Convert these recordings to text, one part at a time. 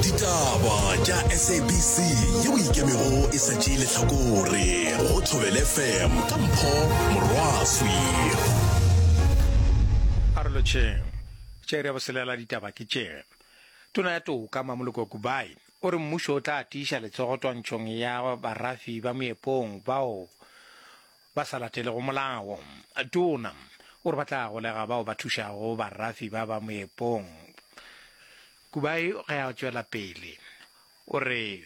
ditaba tša sabc yeo e ikemego e sa tšee lehlakore go thobele fm ka mpho morwaswi arolotšheng tše re boselela ditaba ke tše tona ya toka mamoloko kubai o re mmušo o tla tiiša letsogo twantšhong ya barafi ba moepong bao ba sa latelego molao. Tona o re ba tla golega bao ba thušago barafi ba ba moepong. Kubai ge a tšwela pele o re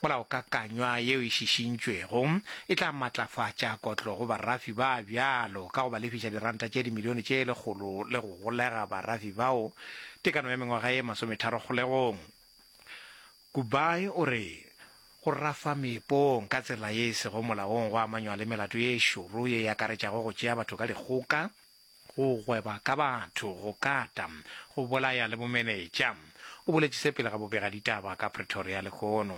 molaokakanywa yeo e šišintšwego e tla matlafatša kotlo go barafi ba bjalo ka go ba lefiša diranta tše dimilione tše lekgolo le go golega barafi bao tekano ya mengwaga ye masometharo kgolegong Kubai o re, Go rafa meepong ka tsela ye e sego molaong go amanywa le melato ye e šoro ye e akaretšago go tšea batho ka dikgoka, go gweba ka batho, go kata, go bolaya le bomenetša, o boletše se pele ga bobegaditaba ka Pretoria lehono.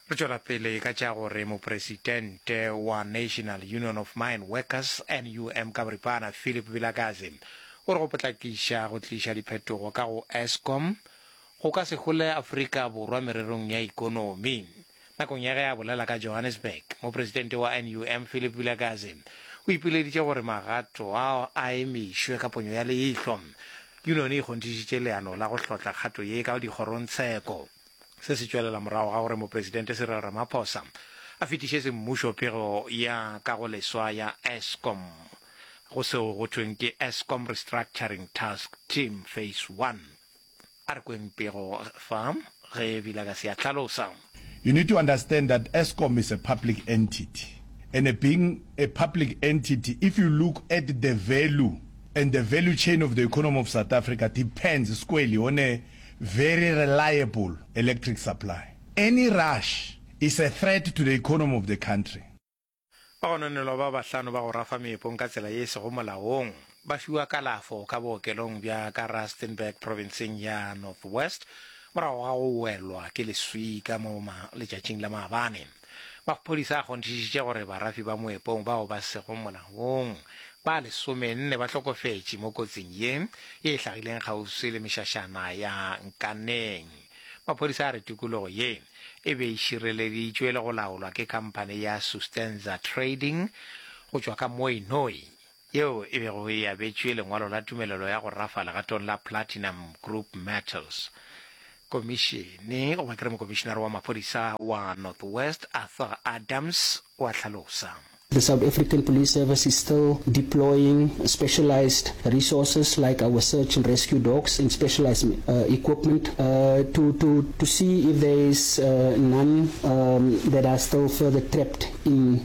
Re tšwela pele ka tša gore mopresidente wa National Union of Mine Workers, NUM, ka boripana Philip Vilakazi o re go potlakiša go tliša diphetogo ka go Eskom go ka se hole Afrika Borwa mererong ya ikonomi. Nakong ya ge a bolela ka Johannesburg, mopresidente wa NUM Philip Vilakazi o ipileditše gore magato ao a emišwe ka ponyo ya leihlo. Yunone e kgonthišitše leano la go hlotla kgato ye ka dikgorong tsheko. Se se tšwelela morago ga gore Mopresidente Cyril Ramaphosa a fetišetše mmušo pego ya kagoleswa ya Eskom go seo go thweng ke Eskom Restructuring Task Team Phase One. A re kweng pego fa ge Vilakazi a hlalosa. You need to understand that Eskom is a public entity and being a public entity if you look at the value and the value chain of the economy of South Africa depends squarely on a Very reliable electric supply. Any rush is a threat to the economy of the country. Bagononelwa ba bahlano ba go rafa meepong ka tsela ye e sego molaong ba fiwa kalafo ka bookelong bja ka Rustenburg provinseng ya North West morago ga go welwa ke leswika mo letšatšing la maabane. Maphodisa a kgonthišitše gore barafi ba moepong bao ba sego molaong ba lesomenne ba hlokofetše mo kotsing ye ye e hlagileng kgauswi le mešašana ya Nkaneng. Maphodisa a re tikologo ye e be e šireleditšwe le go laolwa ke khamphane ya Sustenza Trading go tšwa ka Mooinooi. yeo e bego e abetšwe lengwalo la tumelelo ya go rafa legatong la Platinum Group Metals. Komišene, goba ke re mokomišenare wa maphodisa wa North West, Arthur Adams, o a hlalosa. The South African Police Service is still deploying specialised resources like our search and rescue dogs and specialised equipment to to to see if there is none that are still further trapped in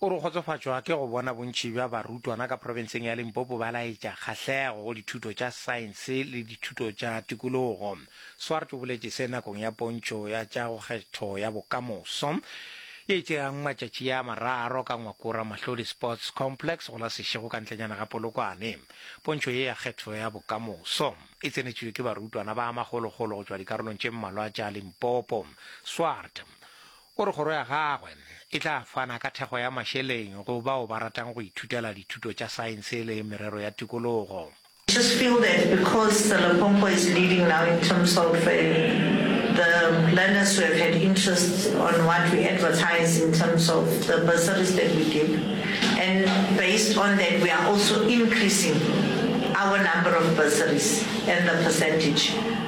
O re o kgotsofatšwa ke go bona bontši bja barutwana ka profenseng ya Limpopo ba laetša kgahlego go dithuto tša saense le dithuto tša tikologo. Swart o boletše se nakong ya pontšho ya tša go kgetho ya bokamoso ye e tšeago matšatši a mararo ka Ngwakora Mahlodi Sports Complex go la Seshego ka ntlenyana ga Polokwane. Pontšho ye ya kgetho ya bokamoso e tsenetšwe ke barutwana ba magologolo go tšwa dikarolong tše mmalwa tša Limpopo. Swart O re kgoro ya gagwe e tla fana ka thekgo ya mašeleng go bao ba ratang go ithutela dithuto tša saense le merero ya tikologo. I just feel that because the Lepompo is leading now in terms of the learners who have had interest on what we advertise in terms of the bursaries that we give and based on that we are also increasing our number of bursaries and the percentage.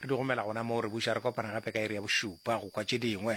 Re di romela gona moo, re buša re kopana gape ka iri ya bošupa go kwa tše dingwe.